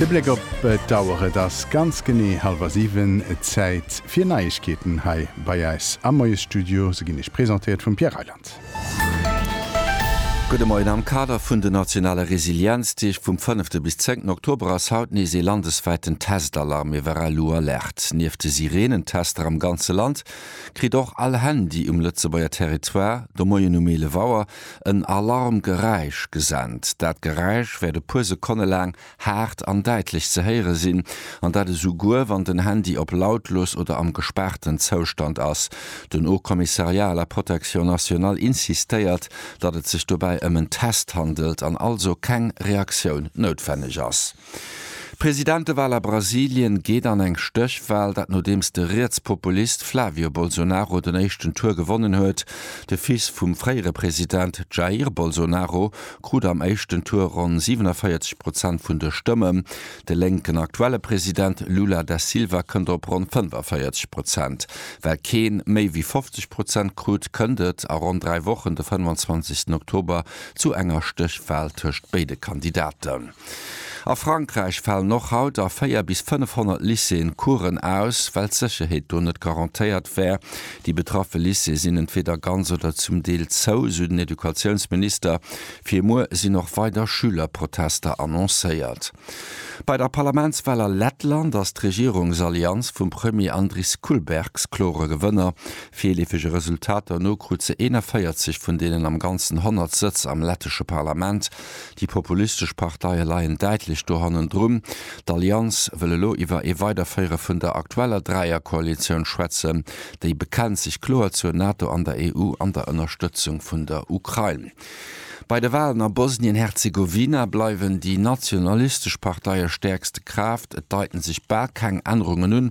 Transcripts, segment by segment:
De Bléck op d'Auer, et ass ganz genee hallwer 7, Zäit fir Neiegkeeten hei bei eis am Moiesstudio. Se ginn iech presentéiert vum Pierre Reyland. Gudde Moien, Am Kader vun den nationale Resilienzdeeg vum fënnefte bis zéngten Oktober ass haut nees ee landeswäiten Testalarm iwwer all Uhr Alert. Nieft de Sireenentester am ganze Land, kritt och all Handy um Lëtzebuerger Territoire de Moien um 11 Auer en Alarmgeräisch gesent. Dat Geräisch wäert e puer Sekonne laang haart an däitlech ze héiere sinn, an dat esou guer wann den Handy op lautlos oder am gespaarten Zoustand ass. Den Haut Commissariat à la Protection Nationale insistéiert, datt et sech dobäi ëm en Test handelt an also keng Reaktioun noutwenneg ass. D'Presidentewal a Brasilien geet an eng Stéchwal, dat nodeems de Rietspopulist Flavio Bolsonaro den éischten Tour gewonnen huet. De Fils vum fréiere President Jair Bolsonaro krut am éischten Tour ronn 47 Prozent vun de Stëmmen. De lénken aktuelle President Lula da Silva kënnt op ronn 45 Prozent. Well kee méi wéi 50 Prozent krut, kënnt et a ronn dräi Wochen, de 25. Oktober, zu enger Stéchwal tëscht béide Kandidaten. A Frankräich falen och haut a 4 bis 500 Lycéeën Coursen aus, well d'Sécherheet do net garantéiert wär. Déi betraffe Lycéeë sinn entweeder ganz oder zum Deel zou, sou den Educatiounsminister. Fir muer sinn och weider Schülerprotester annoncéiert. Bei der Parlamentswal a Lettland ass d'Regierungsallianz vum Premier Andris Kulbergs klore Gewënner. Virleefege Resultater no krut se 41 vun deenen am Ganzen 100 Sëtz am lettesche Parlament. Déi populistesch Parteie leien däitlech do hannendrun. D'Allianz wëll elo iwwer ee Weiderféiere vun der aktueller Dräierkoalitioun schwätzen. Déi bekennt sech kloer zur NATO an der EU an der Ënnerstëtzung vun der Ukrain. Bei de Walen a Bosnien-Herzegowina bleiwen déi nationalistesch Parteie stäerkste Kraaft. Et deiten sech bal keng Ännerungen un.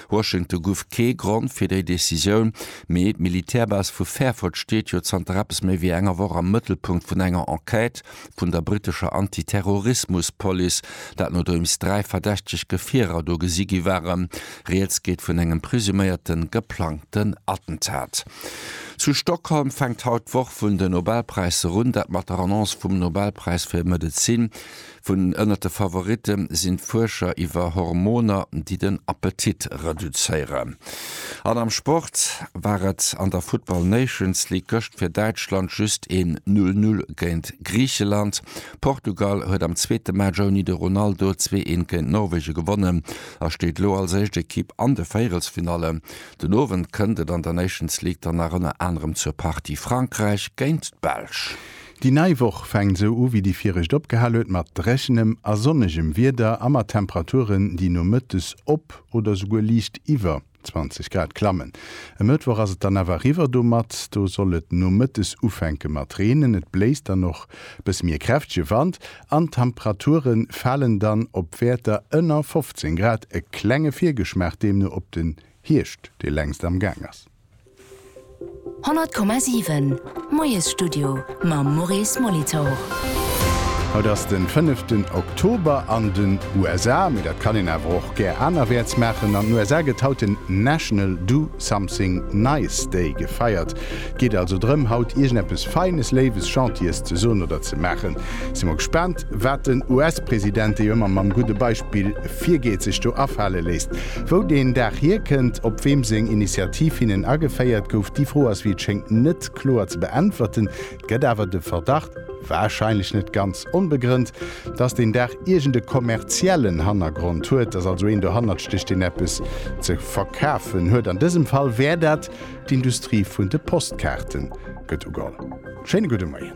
Washington guff kee Grond fir déi Decisioun, mee d'Militärbase vu Fairford steet jo zanter eppes méi wéi enger Woch am Mëttelpunkt vun enger Enquête vun der brittescher Antiterrorismuspolice, dat nodeems dräi verdächteg Gefierer do gesi gi waren. Rieds geet vun engem presuméierte geplangten Attentat. Zu Stockholm fänkt haut d'Woch vun den Nobelpräisser un, dat mat der Annonce vum Nobelpräis fir Medezin. Vun ënnert de Favoritte sinn d'Fuerscher iwwer Hormoner, déi den Appetit reduzéieren. An am Sport war et an der Football Nations League gëscht fir Däitschland just een Null Null géint Griicheland. Portugal huet am zweete Match ouni de Ronaldo zwee een géint Norwegen gewonnen a steet elo als éischt Ekipp an de Véierelsfinallen. Den Owend kënnt et an der Nations League dann nach ënner anerem zur Partie Frankräich géint d'Belsch. Déi nei Woch fänkt esou u wéi déi viregt opgehal huet, mat dréchenem a sonnegem Wieder a mat Temperaturen, déi nomëttes op oder souguer liicht iwwer 20 Grad klammen. E Mëttwoch ass et dann awer eriwwer domat, do soll et nomëttes ufänke mat reenen, et bléist dann och bësse méi e kräftege Wand an d'Temperature falen dann op Wäerter ënner 15 Grad. E klenge Virgeschmaach deemno op den Hierscht, dee längst am Gaang ass. 100,7 Moiesstudio mam Maurice Molitor. Haut ass den fënneften Oktober an den USA, mee dat kann een awer och gär anerwäerts maachen. An den USA gëtt haut den National Do Something Nice Day gefeiert. Et geet also drëm haut iergendeppes Feines, Léiwes, Gentiles ze soen oder ze maachen. Si mer gespaant. Wat den US-President, dee jo ëmmer mam gudde Beispill virgeet, sech do afale léisst, wou deen Dag hierkënnt, op weem seng Initiativ hinnen ageféiert gouf, déi Fro ass, wéi et schéngt, net kloer ze beäntwerten. Et gëtt awer de Verdacht, warscheinlech net ganz onbegrënnt, datt deen Dag iergend e kommerziellen Hannergrond huet, datt also een dohannert stécht, deen eppes ze verkafen huet. An dësem Fall wär dat d'Industrie vun de Postkaarten, gëtt ugeholl. Schéine gudde Moien.